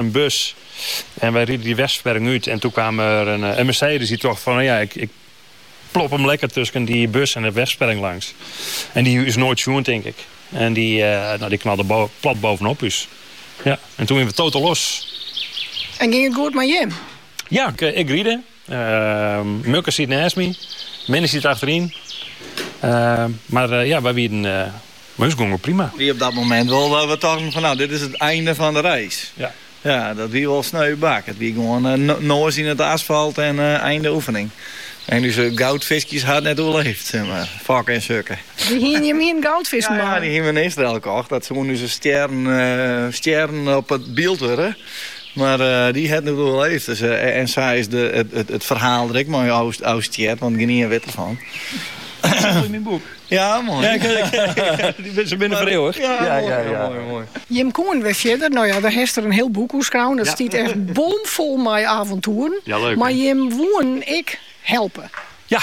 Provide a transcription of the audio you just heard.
in bus en wy rieden dy wegversperring út en toen kaam der in Mercedes dy tocht fan ja ik plop him lekker tusken dy bus en de wegversperring langs en dy hat ús noait sjoen tink ik en dy nou dy knalde plat bovenop ús ja en toen wiene we total loss. En ging it goed mei jim? Ja, ik ried. Mukke siet nêst my, Minne siet achteryn. Mar ja, wy wienen. Mei ús gong it prima. Wie op dat momint wol dat we tochten fan no, dit is it einde fan de reis. Ja. Ja, dat wie wol sneu bak. It wie gewoan noas yn it asfalt en einde oefening. En ús goudfiskjes ha it net oerleefd, sis mar. Fokke en Sukke. Dy hiene jim hiene goudfisken mei. Ja, dy hiene we in Israel kocht. Dat soene ús stjerren op it byld wurde. Mar dy ha it net oerleefd en sa is it ferhaal der ek mei ôfstjerd, want gjinien wit derfan. Dit is in moai boek. Ja, moai. Se binne vereeuwigd. Ja, moai, moai. Jim koenen wer fierder. No ja, dêr hast der in hiel boek oer skreaun. Dat stiet echt bomfol mei avontoeren. Mar jim woenen ek helpe. Ja,